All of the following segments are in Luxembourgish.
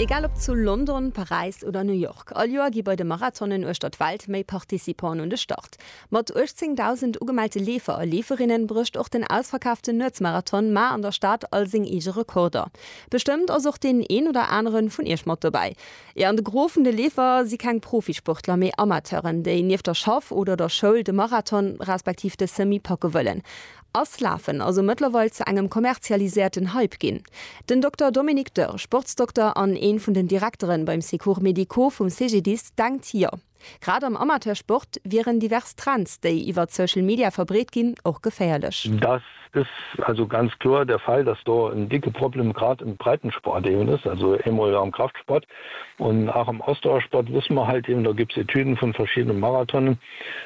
Egal ob zu London, Paräis oder New York, all Joer gi bei de Marathonen uechter d'Welt méi Participanten un de Start. Mat 18.000 ugemellte Leefer a Leeferinnen brécht och den ausverkaaften Nuetsmarathon mar an der Stad all seng eege Rekorder. Bestëmmt ass och deen een oder aneren vun iech mat dobäi. An de Gros vun de Leefer si keng Profisportler, mee Amateuren, déi nieft der Schaff oder der Schoul de Marathon respektiv de Semi packe wëllen. Ass Lafen also mëttlerweil zu engem kommerzialiséierten Hype ginn? Den Dokter Dominique Dörr, Sportsdokter an een vun den Direkteren beim Secours médicaux vum CGDIS denkt jo. Grad am Amateursport wieren divers Trends, déi iwwert Social Media verbreet ginn, och geféierlech. Dass is also ganz kloer der Fall, dass do en dicke Problem grad im Breitensport eben is, also eemol am Kraftsport, Und auch am Ausdauersport wësse mer halt eben, do gëpps Etüden vun verschiddene Marathonen,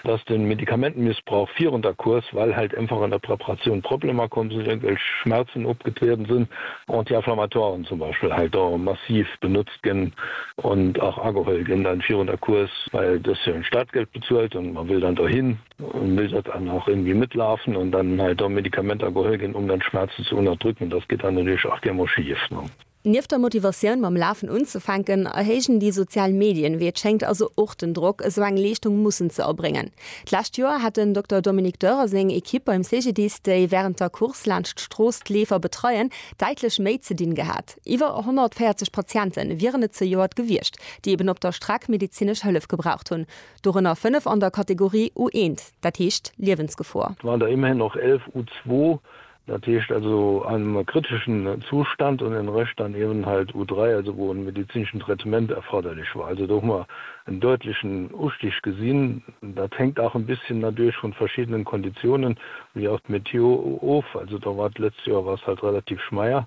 dass den Medikamentenmissbrauch virun der Course, well halt einfach an der Preparatioun Problemer komm sinn, irgendwelch Schmerzen opgetrieden sinn, Anti-inflammatoiren zum Beispill halt do massiv benutzt ginn und auch ageholt ginn dann virun der Course, well do ass jo en Startgeld bezuelt und mer will dann dohin und will dat dann auch irgendwie mitlaufen und dann halt do Medikamenter geholt ginn, um dann d'Schmerzen ze unterdrücken. Das geht dann natürlich auch gär mol schief, ne? Nieft der Motivatioun mam Lafen unzefänken, erhéijen déi sozial Medien, wéi et schéngt, also och den Drock, esou eng Leeschtung mussen ze erbréngen. D'lescht Joer hat den Dokter Dominique Dörr a seng Ekipp beim CGDIS, déi wärend der Course laanscht d'Strooss d'Leefer betreien, däitlech méi ze dinn gehat. Iwwer 140 Patiente wieren et zejoert gewiescht, déi eben op der Streck medezinesch Hëllef gebraucht hunn, dorënner 5 an der Kategorie U1, dat heescht Liewensgefor. Et waren der ëmmerhin och 11 U2, Dat heescht also an engem kriteschen Zustand un en Rëscht dann eben halt U3, also wou en medizineschen Traitement erforderlech war. Also do hu mer en döitlechen Ustig gesinn. Dat hängt auch en bisschen nadurch vun verschiddenen Konditionen wéi auch d'Meteo of. Also do war d'letzt Joer war es halt relativ schmeier,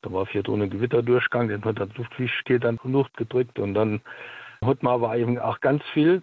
do war virdrun en Gewitter duerchgang, deen huet dann d'Luftfiichtegkeet an d'Luucht gedréckt. An dann huet mer awer eben auch ganz vill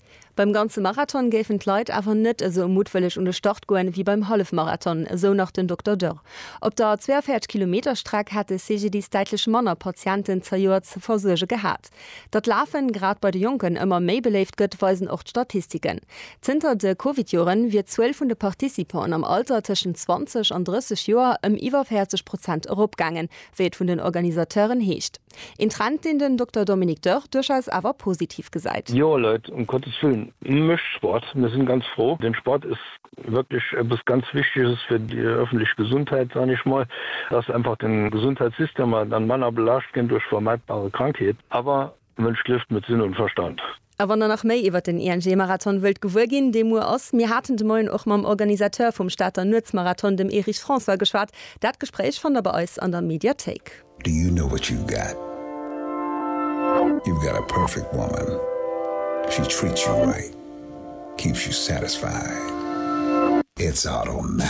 Beim ganze Marathon géifen d'Leit awer net esou muttwëlleg un de Start goen, wéi beim Hallefmarathon, esou nach den Dokter Dörr. Op der 42 Kilometer Streck hätt de CGDIS däitlech manner Patienten zejoert ze versuerge gehat. Datt d'Lafen, grad bei de Jonken, ëmmer méi beléift gëtt, weisen och d'Statistiken. Zënter de Covid-Joren wier d'Zuel vun de Participanten am Alter tëschent 20 an 30 Joer ëm iwwer 40 Prozent eropgaangen, wéi et vun den Organisateuren heescht. Een Trend, deen den Dokter Dominique Dörr duerchaus awer positiv gesäit. Jo Leit, um Gottes Willen, mécht Sport! Mir sinn ganz fro. Den Sport ass wierklech eppes ganz Wichteges fir déi öffentlech Gesundheit, san ech mol, dass einfach den Gesundheitssystem dann manner belaascht ginn duerch vermeidbare Krankheet. Awer, Mënsch liewt met Sinn und Verstand. A wann der nach méi iwwert den ING-Marathon wëllt gewuer ginn, dee muer ass, mir haten de Moien och mam Organisateur vum Stater Nuetsmarathon, dem Erich François, geschwat. Dat Gespréich fannt der bei eis an der Mediathéik. Do you know what you've got? You've got a perfect woman, she treats you right, keeps you satisfied, it's automatic.